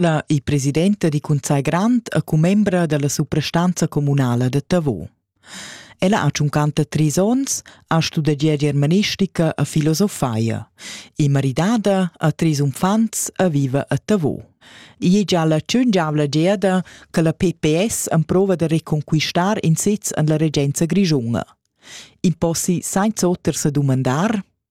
La è presidenta di Cunsai Grand e commembra della suprastanza comunala de Tavo. Ella ha ciuncanta tris ons, ha studegià germanistica e filosofia. È maridada, ha tris unfants e vive a Tavo. Ì è già la ciungiavla geada che la PPS emprova de reconquistar in sez en la regenza grigiunga. In possi senza oter se dumandar?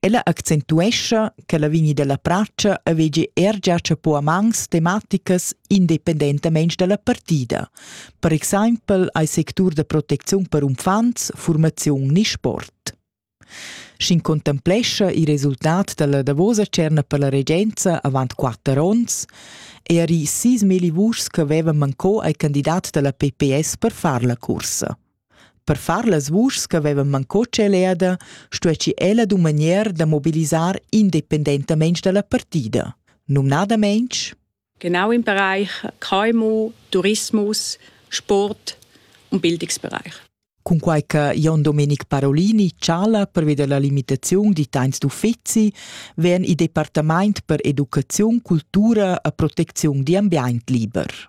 Ella accentuescha che la vigni dalla pratscha avegi er gia chapo a mans tematicas independentamein dalla partida. Per exempel ei sectur da protecziun per uffants, formaziun ni sport. Sc'in contemplescha il resultat dalla davosa cerna per la regenza avant quatter onns, e eri sis meli vuschs che avevan manco ai candidat dalla PPS per far la cursa. Per far las vuschs ch'havevan mancò tscheleda, stuessi ella dumagnar da mobilisar independentamain dalla partida, numnadamein Genau im Bereich KMU, Tourismus, Sport und Bildungsbereich. Cunquai che Jon Domenic Parolini chala pervi dalla limitaziun di temps d'uffizi, vegn il departament per educaziun, cultura e protecziun di ambient liber.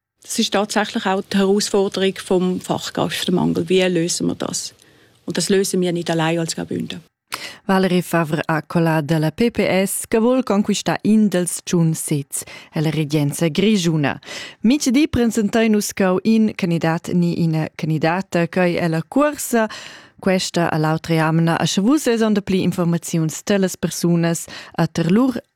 Es ist tatsächlich auch die Herausforderung vom Fachkräftemangel. Wie lösen wir das? Und das lösen wir nicht allein als Gebünden. Valerie Favre ha colà dalla PPS che vuol conquistare in dels tschun sez la regenza grigiuna. Mitch di presentai nus cau in candidat ni ina candidata che è la cuorsa questa all'altra jamna a sche vus es on de pli informaziuns telas persunas a ter lur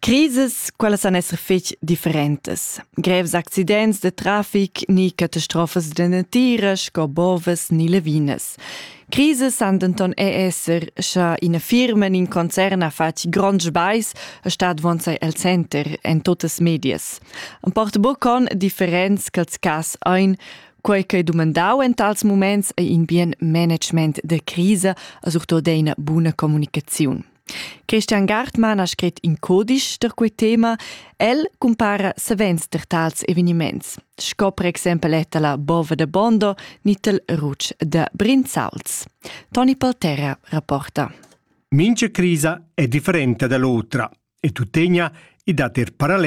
Crises, quellas san esser fetg differentas. Grevs accidents de trafic ni catastrofas de natira sco bovas ni levinas. Crises san denton er esser, sche ina firma in in concern ha fatg grond sbais e stat vonzai el center en totas medias. Am porta buca con differents ch'als cas ein, quei che dumandau en tals moments ei in bien management de crisa e surtut eine buna communicaziun. Christian Gartmann ha scrit in codisch per quei tema. El cumpara savens per tals eveniments, sco per exempel etta la bova de Bondo nitel ruc de Brinzals. Toni Polterra rapporta. Mince crisa è differente dall'otra e tuttegna i da ter parallel